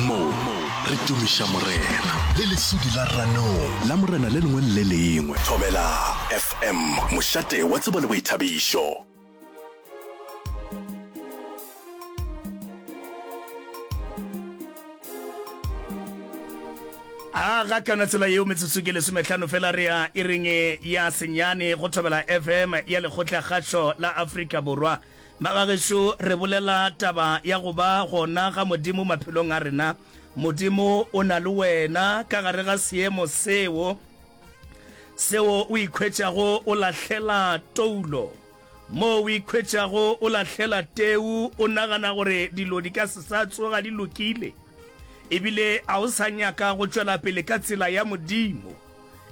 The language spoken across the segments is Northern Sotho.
Mo re tumiša Morena. Le lesudi la ranong. La Morena le lengwe le le lengwe. Thobela FM, mošate wa tsebo le boithabišo. a ga kana tsela yeo metsotso ke lesometlhano fela re ya e reng ya senyane go thobela fm ya lekgotla kgašo la afrika borwa Ba ga gešo, re bolela taba ya go ba gona ga Modimo maphelong a rena. Modimo o na le wena ka gare ga seemo seo, seo o ikhwetšago o lahlela toulo, moo o ikhwetšago o lahlela teu, o nagana gore dilo di ka se sa tsoga di lokile, ebile a o sa nyaka go tšwela pele ka tsela ya Modimo.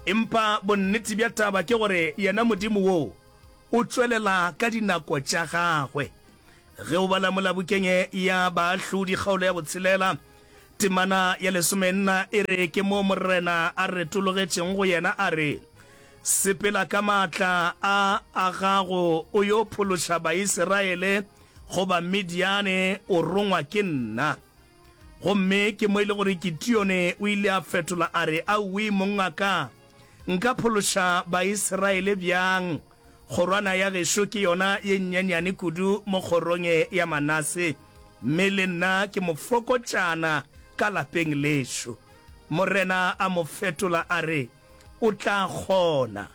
Empa bonnete bja taba ke gore yena Modimo woo, O tšwelela ka dinako tša gagwe. Ge o bala Molabokeng ya Baahlodi kgaolo ya botshelela, temana ya lesomenna e re, Ke moo Morena a retologetšeng go yena a re, Sepela ka maatla a a gago o yo phološa Baisiraele go Bamidiane, o rongwa ke nna. Gomme ke mo e le gore Kitione o ile a fetola a re, Awii, mongaka! Nka phološa Baisraele bjang? Kgorwana ya gešo ke yona ye nnyenyane kudu mo kgorong ye ya Manase, mme le nna ke mofokotšana ka lapeng lešo. Morena a mo fetola a re, O tla kgona.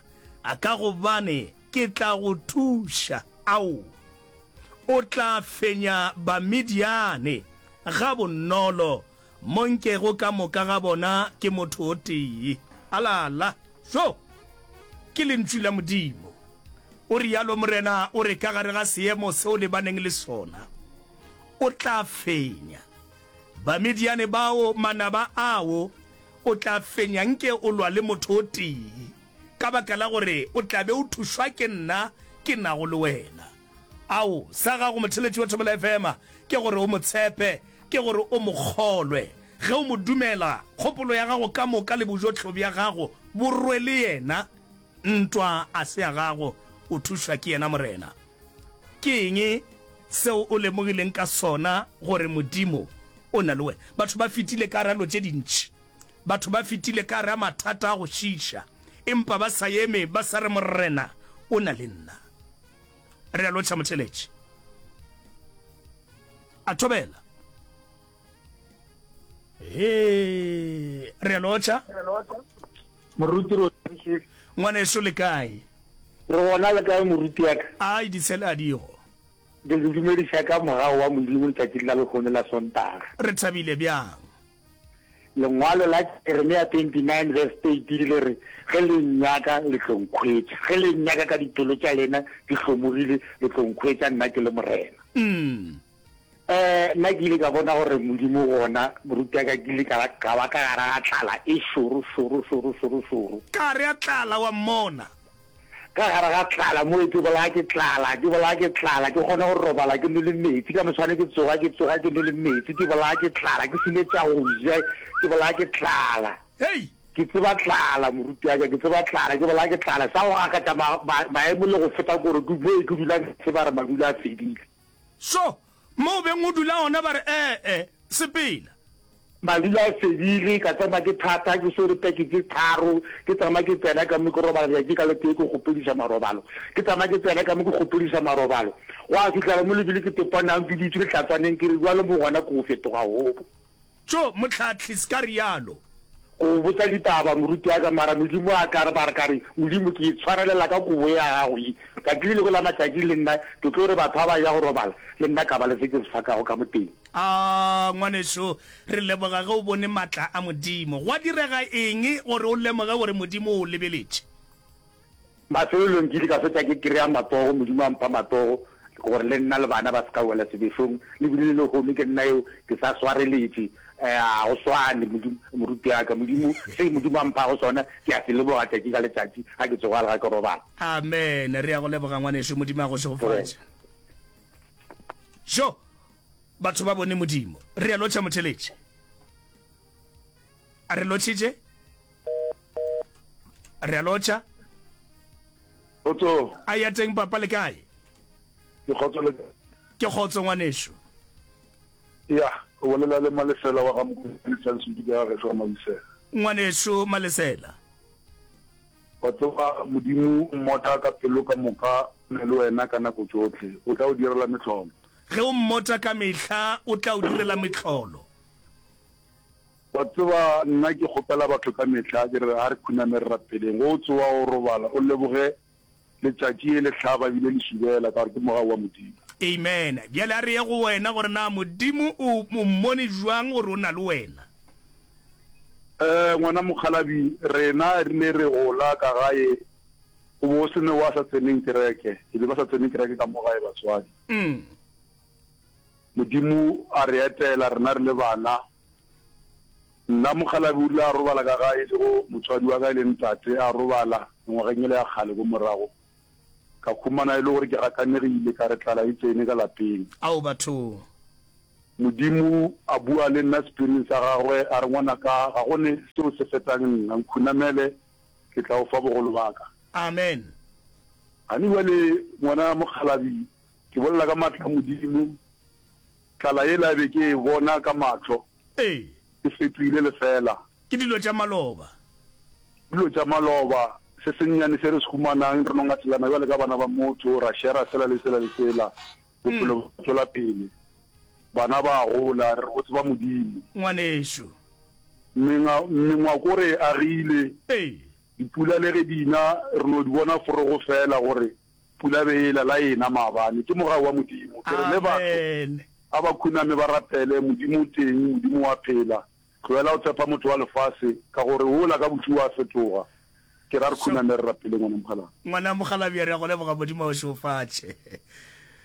A ka gobane ke tla go thuša. Ao, o tla fenya Bamidiane gabonolo Mo nkego ka moka ga bona ke motho o tee. Alala! Šo! Ke Lentšu la Modimo. O realo Morena o re ka gare ga seemo se o lebaneng le sona, O tla fenya. Bamidiane bao, manaba ao, o tla fenya nke o lwa le motho o tee, ka baka la gore o tla be o thušwa ke nna ke nago le wena. Ao, sa gago motheletši wa Thobela FM ke gore o mo tshepe, ke gore o mo kgolwe. Ge o mo dumela, kgopolo ya gago ka moka le bojohlo bja gago bo rwe le yena. Ntwa a se ya gago, o thušwa ke yena. Morena, ke eng seo o lemogileng ka sona gore Modimo o na le wena? Batho ba fetile ka gare a lo tše dintši. Batho ba fetile ka gare a mathata a go šiiša, empa ba sa eme ba sa re, Morena o na le nna. re a lotšha motheletši a thobela he re a lotšha moruti ngwaneso le kae re gona le kae moruti yaka ai ditshele a digo ke dumediša ka mogao wa modimo letšatši la lehono la sontaga re thabile bjang Lengwalo la Jeremia 29 verse 30 le re, Ge le nnyaka, le tlo nkhwetša, ge le nnyaka ka dipelo tša lena di hlomogile, le tlo nkhwetša nna ke le Morena. Um nna ke ile ka bona gore Modimo gona morutiaka ke ile ka ba ka ba ka gara ga tlala e šoro šoro šoro šoro šoro. Ka gare ga tlala, wa mmona, Ka gare ga tlala mo, ke bolaya ke tlala, ke bolaya ke tlala, ke kgone go robala ke nwele meetse, ka moswane ke tsoga, ke tsoga ke nwele meetse, ke bolaya ke tlala, ke sene tša go ja, ke bolaya ke tlala. Hei! Ke tseba tlala, moruti wa ka, ke tseba tlala, ke bolaya ke tlala, sa go gakatša ma, ma, maemo le go feta koro, ke mo ke dulang, ke tseba re madula a fedile. So, mo o beng o dula gona ba re, E-e, sepela. Ba dula a fedile, ka tsena ke thata, ke swere peke tše tharo, ke tsena ke tsena ka mo ke robala letšatši ka letee ke kgopediša marobalo, ke tsena ke tsena ka mo ke kgopediša marobalo, gwa fihlela mo lebile ke topa nang ke dutše lehlatswaneng ke re, Bjale mo gona ke go fetoga hobo. Tjo, Mohlahli, se ka realo! Go o botsa ditaba, moruti wa ka, mara Modimo a ka re, ba re ka re, Modimo, ke itshwarelela ka Kobo ya Gago ye. Tšatši le lengwe la matšatši, le nna ke tlo re batho ba ba eya go robala, le nna ka ba le se ke se fakago ka mo teng. Aa, ngwanešu, re leboga ge o bone matla a Modimo. Gwa direga eng gore o lemoge gore Modimo o o lebeletše? Mafelelong ke ile ka fetša ke kry-a matsogo, Modimo a mpha matsogo gore le nna le bana ba se ka wela sebešong. Le bile le lehono ke nna eo ke sa swareletše. Ga go swane, moruti wa ka. Modimo, se Modimo a mphago sona ke a se leboga tšatši ka letšatši ga ke tsoga le ga ke robala. Amen. Re ya go leboga ngwanešu. Modimo a go šegofatše. Yo! Batho ba bone Modimo. Re a lotšha motheletši. A re lotšhitše? re a lotšha Kgotso. a ya teng papa le kae Ke kgotso le ke kgotso ngwanešu ya o bolela le malesela wa ga mokoelisantshudi ka ga gešo wa malesela ngwanešu malesela wa tseba modimo o mmota ka pelo ka moka o na le wena ka nako tšotlhe o tla o direla metlholo ge o mmota ka mehla o tla o direla metlholo Wa tseba, nna ke kgopela batho ka mehla, ke re, ga re khuname re rapeleng. Ge o tsoga o robala, o leboge letšatši e le hlaba e bile le šubela, ka gore ke mogau wa Modimo. Amen. Bjale a re ye go wena, gore na Modimo o o mmone bjang gore o na le wena. Ee, ngwana mokgalabje, rena re ile re gola ka gae go be go se ne wa sa tseneng kereke, e be ba sa tsene kereke ka mo gae batswadi. Modimo a re etela rena re le bana, Nna mokgalabje o rile a robala ka ga e sego motswadi wa ka e leng tate a robala mengwageng ele ya kgale ko morago. Ka humana e le gore ke gakanegile ka re tlala e tsene ka lapeng. Ao bathong! Modimo a bua le nna sepiring sa gagwe a re, Ngwanaka, ga go ne se o se fetang nna. Nkhunamele, ke tla o fa bogolo ba ka. Amen. Gane bjale ngwana mokgalabje, Ke bolela ka matla a Modimo, tlala yela be ke e bona ka mahlo Ee. e fetohile lefeela. Ke dilo tša maloba. Ke dilo tša maloba, se sennyane se re se humanang, re no ngatelana bjale ka bana ba motho, ra shera sela le sela le sela, bophelo bo tšwela pele, bana ba a gola, re re go tseba Modimo. Ngwanešu. Menga, mengwako re e agile, Ee. dipula le ge di na, re no di bona forogo feela gore Pula be ela la ena maabane. Ke mogau wa Modimo. Ke re le batho, a ba khuname ba rapele, Modimo o teng, Modimo o a phela. Tlohela go tshepa motho wa lefase, ka gore wola ka bohliwa a fetoga. Ke ra re khuname re rapele, Ngwana Mokgalabje. Ngwana Mokgalabje, re a go leboga, Modimo a go šeofatše.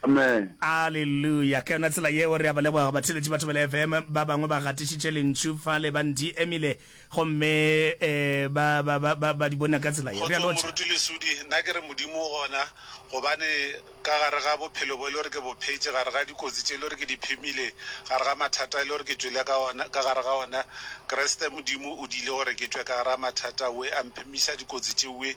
Amen. Aleluya! Ka yona tsela yeo, re a ba leboga batheeletši ba Thobela FM. Ba bangwe ba gatišitše lentšu fale, ba ndi emile, gomme e, ba, ba, ba, ba, ba di bona ka tsela yeo. Re a Kgotsong lotšha. Moruti Lesudi, nna ke re Modimo o gona, gobane ka gare ga bophelo bo e le gore ke bo phetše, gare ga dikotsi tše e le gore ke di phemile, gare ga mathata e le gore ke tšwele ka ona, ka gare ga ona, Kriste Modimo o diile gore ke tšwe ka gare ga mathata we, a mphemiša dikotsi tšewe,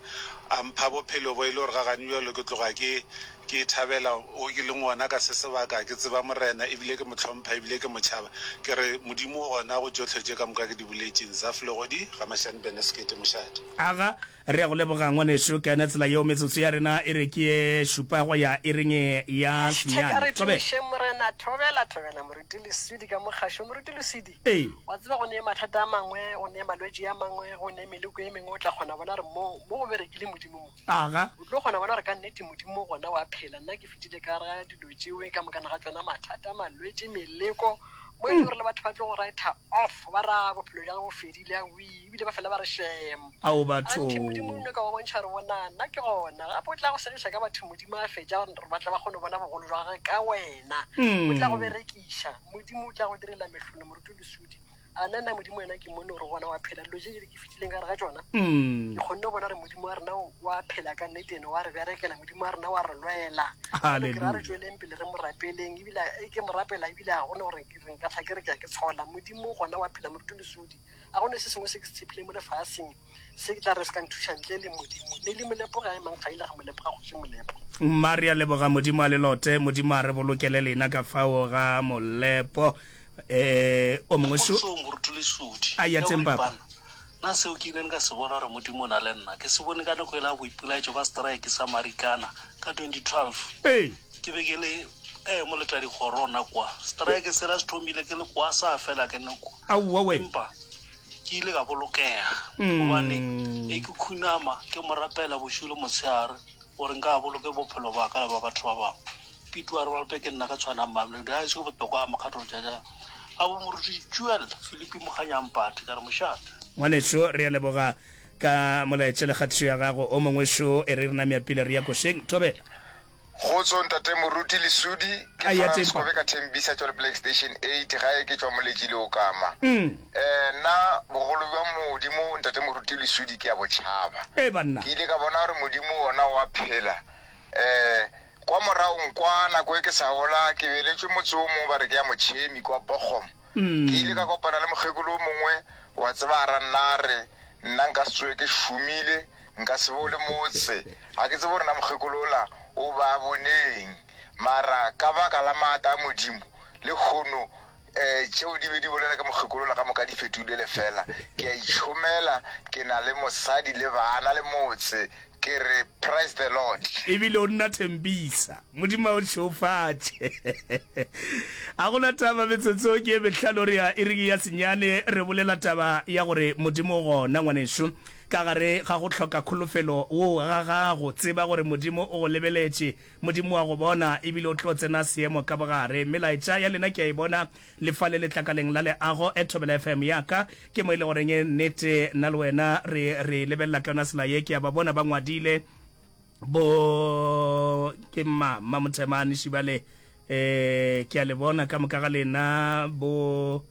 a mpha bophelo bo e le gore ga gane bjalo ke tloga ke, Ke thabela wo ke leng wona ka se sebaka. Ke tseba Morena, ebile ke mo hlompha, ebile ke mo tšhaba. Ke re, Modimo o gona go tšohle tše ka moka ke di boletšeng. Zaf Legodi, Gamashane Bene Sekete, Mošate. Aga, Re a go leboga, Ngwanešu Kene. Tsela yeo metsotso ya rena e re ke ye šupa go ya iring ye ya Hashtag a re šunyane. Thobela. tumišeng Morena. Thobela, thobela, Moruti Leswidi ka mo gašo. Moruti Leswidi, Ee. wa tseba go ne mathata a mangwe, go ne malwetši a mangwe, go ne meleko e mengwe, o tla kgona bona re mo, mo go berekile Modimo mo. taga. O tlo kgona go bona gore ka nnete Modimo gona wa phela. Nna ke fetile ka gare ga dilo tšeo, ka mokana ga tšona mathata, malwetši, meleko, mo e lego gore le batho ba tlo go writer off, ba re a bophelo bja ge bo fedile, awii, ebile ba fela ba re shem. Ao batho! Anthe Modimo o nyaka go bontšha gore bonang, nna ke gona. Gape o tla go segiša ka batho Modimo a fetša gore ba tle ba kgone go bona bogolo bja gagwe ka wena. O tla go berekiša. Modimo o tla go direla mehlolo, moroto le sudi. a na nna modimo wena ke mone gore gona wa phela dilo je jele ke fitileng ka re ga tsona mm. ke kgonne bona gore modimo wa rena wa phela ka nnete ene wa re berekela modimo wa rena wa re lwela kera re tsweleng pele re mo rapeleng ebile e ke mo rapela ebile ga gone gore re nka tlha ke re ke ya ke tshola modimo gona wa phela moruto lesodi ga gone se sengwe se ke se tshepileng mo lefaseng Se ke tla re se ka nthuša ntle le Modimo. Mme le molepo ga emang ga ile ga molepo ga kgoši molepo. Mma re a leboga Modimo a lelote. Modimo a re bolokele lena ka fao ga molepo. Eh, o mongwe so. Kgotsong, Moruti Lesodi. A ya teng, Papa. Na seo ke ileng ka se bona gore Modimo o na le nna, ke se bone ka nako e la boipelaetšo ba setraeke sa Marikana ka 2012. Ee. Ke be ke le, eh, moletadikgorona kwa. Setraeke sela se thomile ke le kwa, sa fela ke le kwa. Aowa we! Empa. Ke ile ka bolokega gobane ne ke khunama ke mo rapela bošiu le motshegare gore nka a boloke bophelo ba ka le ba batho ba bangwe. Pete wa re ba lope ke nna ka tshwanang Mamelodi ga e se botokwa a mokgatlo jaja ga bo moruti Jewel Filipi Mokganyampati ka re mošate. Ngwanešu re a leboga ka molaetša le kgatišo ya gago. O mongwešu e re re name a pila re ya košeng. Thobela. Kgotso ntate moruti lesudi ke Frans ko be ka thembisa tšwa leplake station eight gae ke tšwa moletši le okama nna bogolo bja modimo ntate moruti lesudi ke ya botšhaba ke ile ka bona gore modimo wona wa phela um kwa morago kwa nako e ke sa gola ke beletšwe motse o mongwe ba re ke ya motšhemi kwa bogom ke ile ka kopana le mokgekolo o mongwe wa tseba a ra nna re nna nka se tsoe ke šomile Nka se be o le motse. Ga ke tsebe gore na mokgekolo ola o ba boneng, mara ka baka la maata a Modimo, lehono eh, tšeo di be di bolela ka mokgekolo ola ka moka di fetogile lefela. Ke a itšhomela, ke na le mosadi le bana le motse. Ke re, Praise the Lord! Ebile o nna thempisa. Modimo a o šeofatše. A go na taba, metsotso ke e mehlano re ya iring ya senyane, re bolela taba ya gore Modimo o gona, ngwanešu. Ka gare ga go hloka kholofelo go ga gago, tseba gore Modimo o go lebeletše. Modimo wa go bona, e bile o tlo tsena seemo ka bogare. Melaetša ya lena ke a e bona le fa le letlakaleng la leago. E Thobela FM ya ka, ke mo e le goreng nnete nna le wena re re lebelela ka yona sela ye. Ke a ba bona ba ngwadile bo ke mma mma Mothemane Šibale, ee ke a le bona ka moka ga lena bo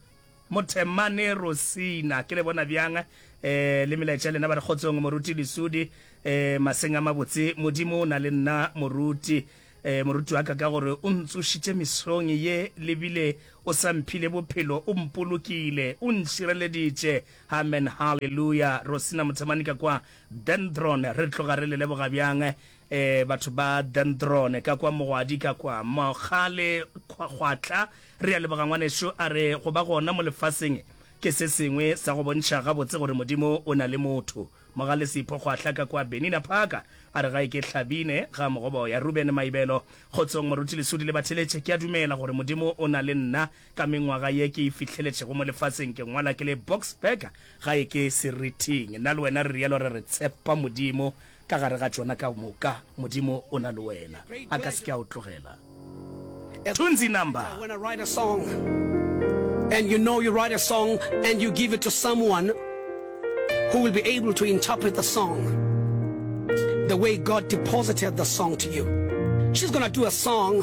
Mothemane Rosina, ke le bona bjang? Ee, le melaetša ya lena ba re kgotsong Moruti Lesudi. Ee, maseng a mabotse, Modimo o na le nna Moruti. Ee, Moruti wa ka, ka gore o ntsošitše mesong ye le bile o sa mphile bophelo, o mpolokile, o ntšireleditše. Amen, hallelujah. Rosina Mothemane ka kwa Dendron, re tloga re le leboga bjang. E, batho ba Dendrone, ka kwa mogwadi, ka kwa mogale kgwa, gwa tla. Re a leboga, ngwanešu. A re, go ba gona mo lefaseng ke se sengwe sa go bontšha gabotse gore Modimo o na le motho. Mogale Sipho, gwa tla ka kwa Benina Park. A re, ga e ke Hlabine, ga Mogoboya, Ruben Maibelo. Kgotsong, Moruti Lesudi le Batheletše. Ke a dumela gore Modimo o na le nna. Ka mengwaga ye ke e fihleletšego mo lefaseng, ke ngwala ke le Boksburg, ga e ke Seriting. Nna le wena re realo, re re, Tshepa Modimo. Ka gare ga tšona ka moka, Modimo o na le wena. A ka se ke a o tlogela. Tunzi number. When I write a song and you know you write a song and you give it to someone who will be able to interpret the song the way God deposited the song to you. She's gonna do a song